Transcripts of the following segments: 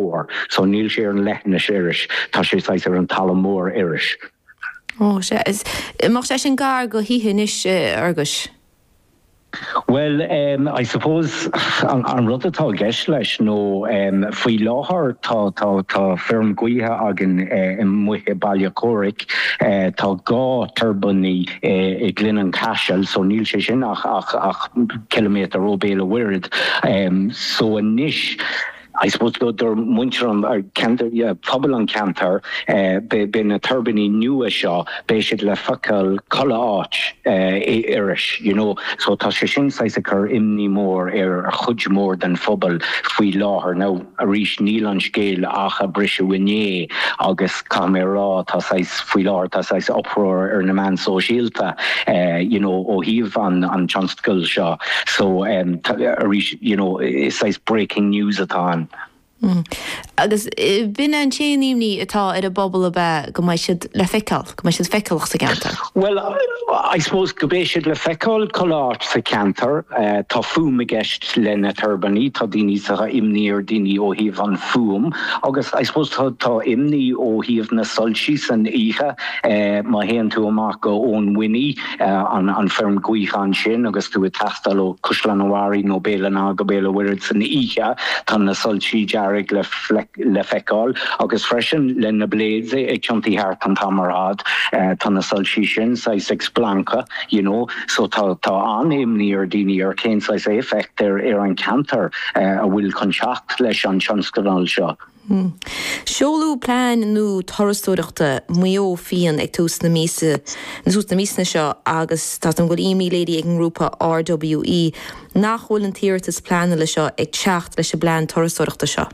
mór. So níl sé ar an leithinis arís, tá sé saghas ar an talamh mór arís. Ó sea. An mbeadh sé sin gar do thithe anois, Fherguis. Bhuel ehm, I suppose, an rud atá i gceist leis nó ehm, faoi láthair tá, tá, tá feirm gaoithe againn i Muine, Béal Átha Chomhraic, tá dhá turbine i nGleann an Chaisil so níl sé sin ach, ach, ach ciliméadar ó Béal a' Mhuirthead ehm, so anois. I suppose do do mhuintir an phobail an ceantar beidh na tuirbíní nua seo beidh siad le feiceáil chuile áit in Iorras you know so tá sé sin saghas ag cur imní mór ar chuid mhór den phobal faoi láthair now arís níl an scéal ach ag briseadh inné agus caithfidh mé a rá, tá saghas, faoi láthair, tá saghas uproar ar na meáin sóisialta, you know, ó thaobh an tionscadail seo. So, arís, you know, is saghas breaking news atá ann. Mm. Agus ab in an t-aon imní atá ar an bpobal ab ea, go mbeidh siad le feiceáil, go mbeidh siad feiceálach sa gceantar? Bhuel, I suppose, go mbeidh siad le feiceáil chuile áit sa cheantar. Tá fuaim i gceist. Leis na turbíní, tá daoine sa tá imní ar daoine ó thaobh an fuaim agus I suppose tá tá imní ó thaobh na soilsí san oíche. Má théann tú amach go Oweninny, an an feirm gaoithe ansin agus tú ag taisteal ó Caisleán an Bharraigh nó Béal an Átha go Béal an Mhuirthead san oíche, tá na soilsí dearg le le feiceáil agus freisin leis na blades ag tiontú thart an t-am ar fad, tá na soilsí sin saghas ag splancadh, you know. So tá an-imní ar daoine ar cén saghas éifeacht ar an cheantar a bhfuil chun teacht leis an tionscadal seo. Seoladh plean nua turasóireachta Mhaigh Eo féin ag tús na míosa na míosa seo agus tá an bhfuil imní léirithe ag an ngrúpa RWE nach bhfuil an t-iarratas pleanála seo ag teacht leis an bplean turasóireachta seo.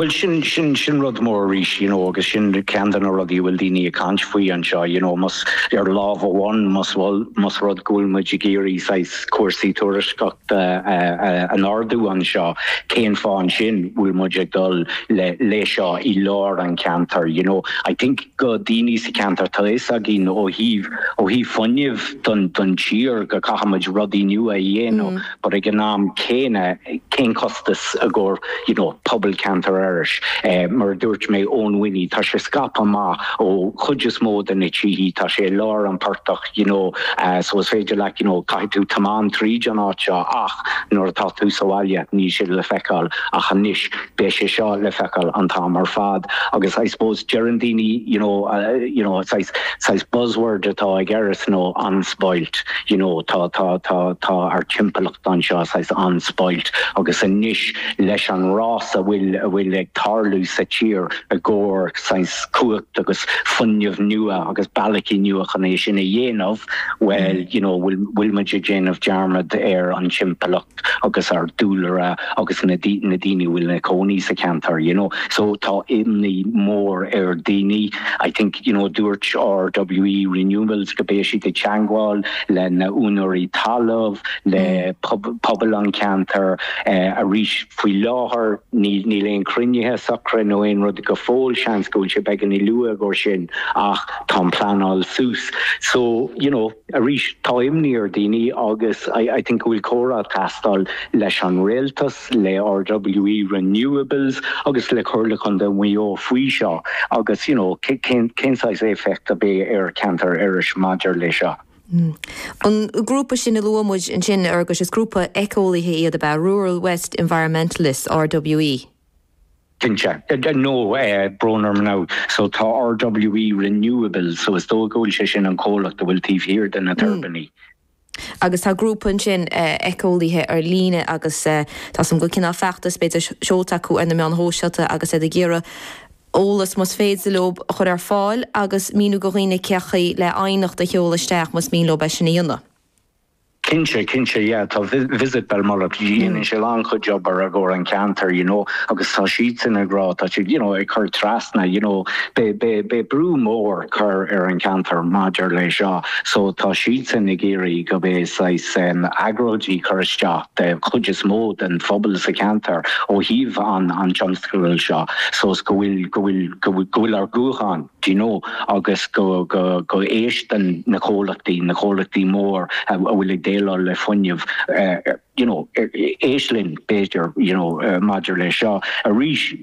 Bhuel sin, sin, sin rud mór arís you know agus sin ceann de na rudaí a bhfuil daoine ag caint faoi anseo you know más, ar lámh amháin más rud, más rud go bhfuil muid ag iarraidh saghas cúrsaí turasóireachta a, a, a ardú anseo cén fáth ansin bhfuil muid ag dul le, lei seo i lár an cheantair you know I think do daoine sa cheantar tá fhios againn ó thaobh, ó thaobh fuinnimh don, don tír go caithfimid rudaí nua a dhéanamh. but ag an am céanna cén costas i gcomhair you know pobal ceantar Iorrais? Mar a dúirt mé Oweninny tá sé scaipthe amach ó chuid is mó de na tithe, tá sé i lár an phortach you know so is féidir leat you know caithfidh tú tiomáint tríd an áit seo ach nuair atá tú sa bhaile níl sé le feiceáil ach anois Beidh sé seo le feiceáil an t-am ar fad agus I suppose deireann daoine you know you know saghas saghas buzzword atá ag Erris nó unspoilt you know tá tá tá tá ár timpeallacht anseo saghas unspoilt agus anois leis an rás a bhfuil a bhfuil ag tarlú sa tír i gcomhair saghas cumhacht agus fuinneamh nua agus bealachaí nua chun é sin a dhéanamh well you know bhfuil bhfuil muid ag déanamh dearmad ar an timpeallacht agus ár dúlra agus na na daoine a bhfuil ina cónaí sa cheantar you know so tá imní mór ar daoine I think you know dúirt RWE Renewables go mbeidh siad ag teagmháil le na úinéirí talamh le pobal an cheantar eh arís faoi láthair níl níl aon cruinnithe socra nó aon rud go fóill seans go bhfuil sé beagáinín luath dó sin ach tá an pleanáil suas so you know Arís, tá imní ar daoine agus I think go bhfuil comhrá ag teastáil leis an Rialtas, le RWE Renewables agus le Comhairle Contae Mhaigh Eo faoi seo agus you know cén cén saghas éifeacht a bheidh ar cheantar Iorrais maidir leis seo. An grúpa sin a luaigh muid ansin a Fhearghais, is grúpa eiceolaithe iad ab ea, Rural West Environmentalists, RWE? Cinnte. No, tá brón orm no. So tá RWE Renewables, so is dóigh go bhfuil sé sin an comhlacht a bhfuil taobh thiar de na tuirbíní. Agus tá grúpa ansin eiceolaithe ar líne agus tá saghas cineál feachtas b'fhéidir seolta acu ar na meáin shóisialta agus iad ag iarraidh eolas más féidir leo a chur ar fáil agus míniú do dhaoine cén chaoi le aighneacht a sheoladh isteach más mian leo é sin a dhéanamh. Cinnte, cinnte yeah tá Visit Belmullet dhéanann siad an-chuid obair i gcomhair an cheantair you know agus tá siadsan ag rá tá siad you know ag cur trasna you know beidh beidh beidh brú mór cur ar an cheantar maidir leis seo so tá siadsan ag iarraidh go mbeidh saghas em agóidí cur isteach de chuid is mó den phobal sa cheantar ó thaobh an an tionscadail seo so is go bhfuil go bhfuil go bhfuil go bhfuil ár nguth againn do you know, agus go n-éisteann na comhlachtaí, na comhlachtaí mór a bhfuil ag déileáil le fuinneamh, you know, éist linn b'fhéidir, you know, maidir le seo arís.